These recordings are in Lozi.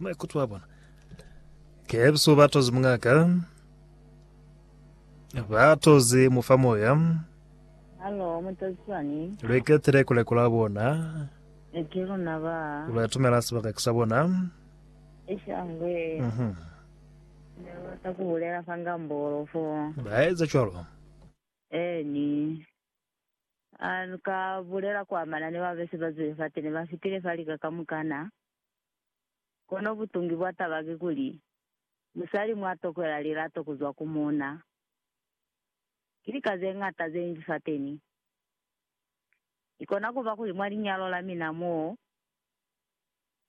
maikuto a bona kebso ba toze mungaka ba toze mufa moya Halo, mutazisani. lweketele kuleko la bona Eke luna ba. lwatumela sebaka ke sa bona Ishangwe. Mhm. Ne bata kubulela fa ngambolo fo. ba eza cwalo Eni. A ni ka bulela kwa manani ba bese ba zwile fate ne ba fitile fa lika kamukana. Kono butungi bwa taba ki kuli, musali mwa tokwela lilato ku zwa ku muuna, ki lika ze ñata ze nji fateni. I kona ku ba kuli mwa linyalo la mina mo,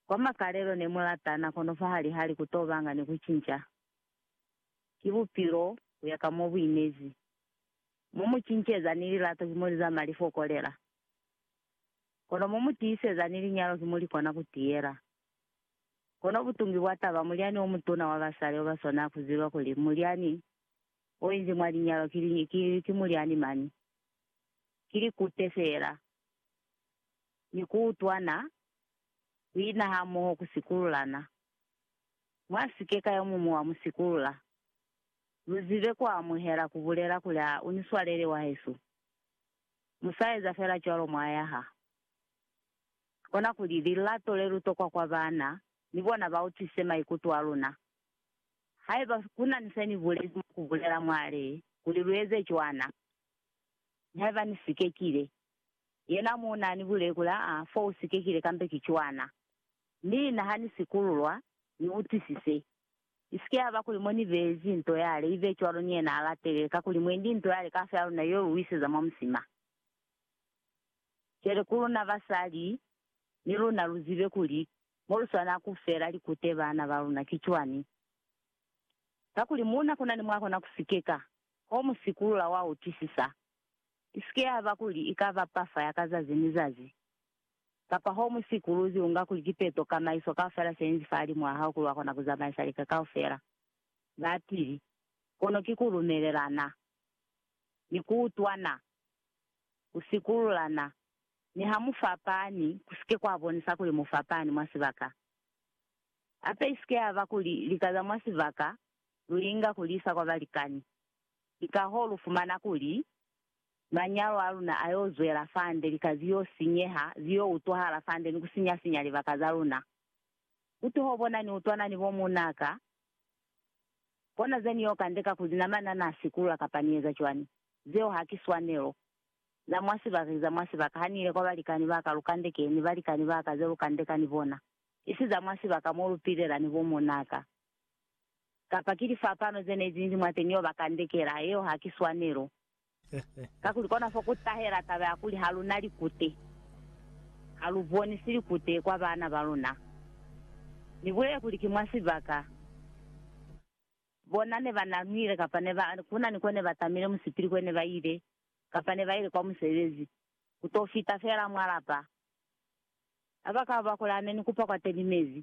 kwa makalelo ne mu latana kono fahali-hali ku tobanga ni ku cinca. Ki bupilo ku ya ka mo bu inezi. Mu mu cinceza ni lilato ki mo li zama li fokolela, kono mu mu tiiseza ni linyalo ki mo li kona ku tiyela. Kono butungi bwa taba, mulyani o mutuna wa basali o ba swanela ku ziba kuli mulyani o inzi mwa linyalo ki, ki, ki mulyani mani, ki likute feela, ni ku utwana, ku ina hamoho, ku sikululana. Mwa si ke ka yo muñwi wa mu sikulula. Mu zibe ku amuhela ku bulela kuli, A u ni swalele, wahesu? Mu sa eza fela cwalo mwa yaha. Kona kuli lilato le lu tokwa kwa bana ni bona ba utwisise maikuto a luna. Haiba ku na ni se ni bulezi mwa ku bulela mwa le kuli lu eze cwana, Haiba ni sikekile. Yena muuna a ni buleli kuli, Aa, fo u sikekile kambe ki cwana. Mi na ha ni sikululwa, ni utwisise. Isike yaba kuli mo nibezi nto yale ibe cwalo ni yena alatele, kakuli mwendi nto yale kafela luna yo luiseza mwa musima. Cwale ku luna basali, ni luna luzibe kuli moluswana kufela likute bana baluna ki cwani. Kakuli muna kunani mwakona kusikeka, ho musikulula wa utwisisa. Isike yaba kuli ikaba pafa ya ka zazi ni zazi, Kapa homu sikuluzi unga kuli kipeto kamaiso kaufela seinzi fahalimu ahao kuli wakona kuzamaisa lika kaufela. Bapili, kono ki kulumelelana, ni kuutwana, kusikululana, niha mufapani, kusike kwabonisa kuli mufapani mwa sibaka. Hape isike yaba kuli lika za mwa sibaka luinga kuliisa kwa balikani, kikahoo lufumana kuli Manyalo a luna a yo zwela fande, lika zi yo sinyeha, zi yo utwahala fande ni ku sinya-sinya libaka za luna. Ku toho bona ni utwana ni bo muuna ka, kona ze ni yo kandeka ku zi namana na sikulula kapa ni eza cwani. Zeo haki swanelo. Za mwa sibaka ki za mwa sibaka. Ha ni ile kwa balikani ba ka, lu kandekeni ni balikani ba ka ze lu kandeka ni bona, isi za mwa sibaka mo lu pilela ni bo muuna ka. Kapa ki lifapano ze ne zinzi mwateñi yo ba kandekela, yeo haki swanelo. Kakuli kona fo ku tahela taba ya kuli ha lu na likute, ha lu bonisi likute kwa bana ba luna. Ni bulele kuli ki mwa sibaka bona ne ba nanwile kapa ne ba ku na ni ko ne ba tamile musipili kwe ne ba ile kapa ne ba ile kwa musebezi, ku to fita fela mwa lapa. Ha ba ka ba kuli ha ne ni kupa kwateni mezi,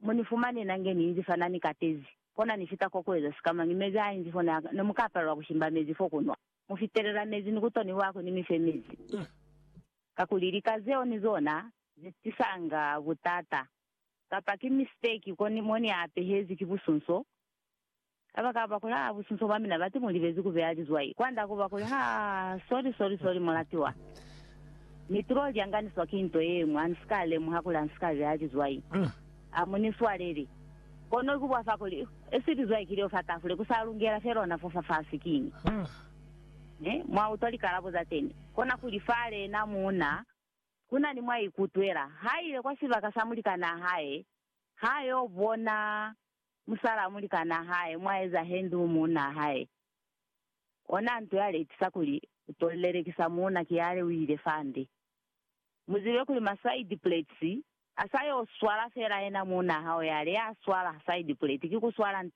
Mo ni fumane na nge ni inzi fa na ni katezi, kona ni fita ko kueza sikamañi mezi a inzi fo na, ne mu ka palelwa ku shimba mezi fo ku nwa. Mu fitelela mezi ni ku to ni lwa kuli ni mi fe mezi. Kakuli lika zeo ni zona ze tisanga butata. Kapa ki mistake ko ni, mo ni apehezi ki busunso, Kabakaba kuli haa businso bwa mina bati mu libezi ku beya lizwai kwanda kuba kuli haa sorry sorry sorry mulatiwa. Ni tulo lyanganiswa ki nto yeñwi ha nisika lemuha kuli ha nisika beya lizwai. Amu ni swaleli. Kono ki bwa fa kuli esi lizwai ki leo fa tafule ku sa lungela fela ona fo fafasi kiñi. He mwa utwa likalabo za teni. Kona kuli fa lena muuna kuna ni mwa ikutwela. Ha ile kwa sibaka sa mulikanaa hae ha yo bona Musala a mulikanaa hae mwa eza henduu muunaa hae. Onaa nto ya lekisa kuli u to lelekisa muuna ki yale u ile fande. Mu zibe kuli ma side plates a sa yo swala fela yena muunaa hao yale ya swala side plate ki ku swala nta.